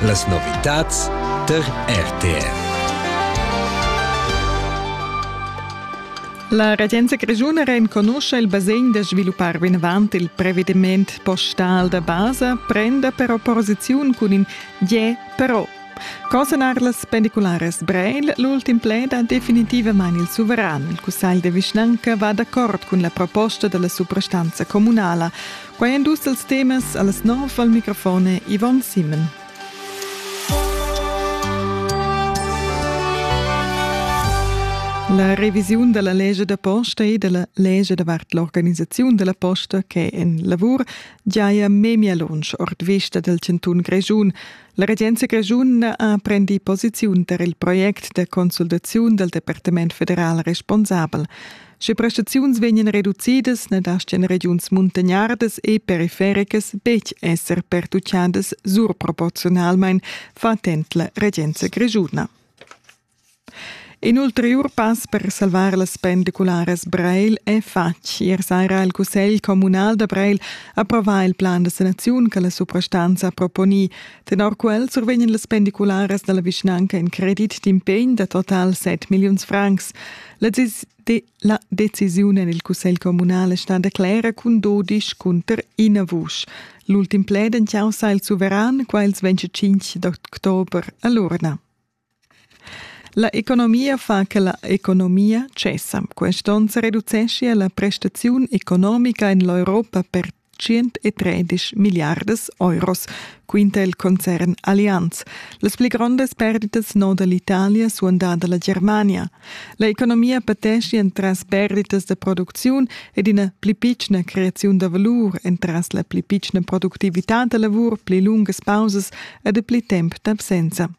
Las novitads per RTR. La regenza grischuna renconuscha il basegn da sviluppar vinavant il prevediment postal da basa, prenda però posiziun cun in je però. Consonar las pendicularas Breil, l'ultim pled ha definitivamain il suveran. Il cussagl de vischnanca va d'accord cun la proposta della suprastanza comunala. Quai èn dus dals temas a las nov al microfon Yvonne Simmen. La revisiun da la legge da posta e da la legge davart l'organisaziun da la posta che è en lavur giaja memia lunsch ord vista dal chantun Grischun. La regenza grischuna ha prendi posiziun tar il project da consultaziun dal Departament federal responsabel. Sche prestaziuns vegnan reducidas, ne dastgan regiuns muntagnardas e perifericas betg esser pertucciadas surproporziunalmein, fa attent la regenza grischuna. In ulteriur pass per salvar las pendicularas Breil è fatg. Ier saira il Cussegl communal da Breil approvà il plan da sanaziun che la suprastanza proponì. Tenor quel survegnan las pendicularas dalla vischnanca in credit d'impegn da total 7 milliuns francs. La, de la decisiun en il Cussegl communal è stata clera cun dodisch cunter ina vusch. L'ultim pled en causa il suveran, quels vence 5 d'october a l'urna. La economia fa che la economia tschessa. Quest'onn se reduceschia la prestaziun economica en l'Europa per 113 miliardas euros, quinta il concern Allianz. Las pli grondas perditas noda l'Italia suandada la Germania. La economia patescia entras perditas da producziun ed ina pli pitschna creaziun da valur, entras la pli pitschna productivitad da lavur, pli lungas pausas ed pli temp d'absenza.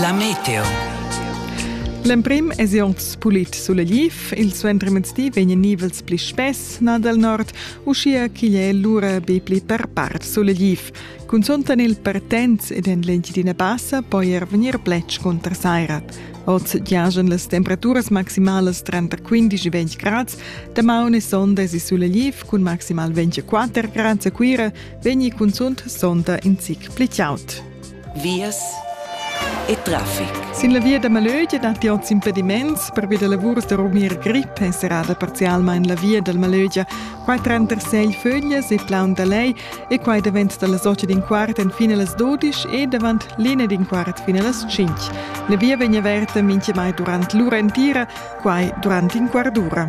La meteo. L'emprim èsi anc pulit sulegliv, il suentermezdi vegnan nivels pli spess nà dal nord, uschia ch'igl è lura be pli per part sulegliv. Cunzunt en il Pertens ed en l'Engiadina Bassa poi er vegnir pletg cunter saira. Oz giajan las temperaturas maximalas tranter 15 e 20 grads. Damaun e sonda èsi sulegliv cun maximal 24 grads a Cuira, vegni cunzunt sonda in zic pli tgaut. Vias e traffic. Sin la via da Malögia datti oz impediments pervi da lavurs da rumir grip è serrada parzialmain la via dal Malögia. Quai tranter Segl Föglias e Plaun da Lei e quai davent da las 8 d'in quart fin a las 12 e davant l'ina d'in quart fin a las 5. La via vegn averta mintgamai durant l'ura entira, quai durant in quart d'ura.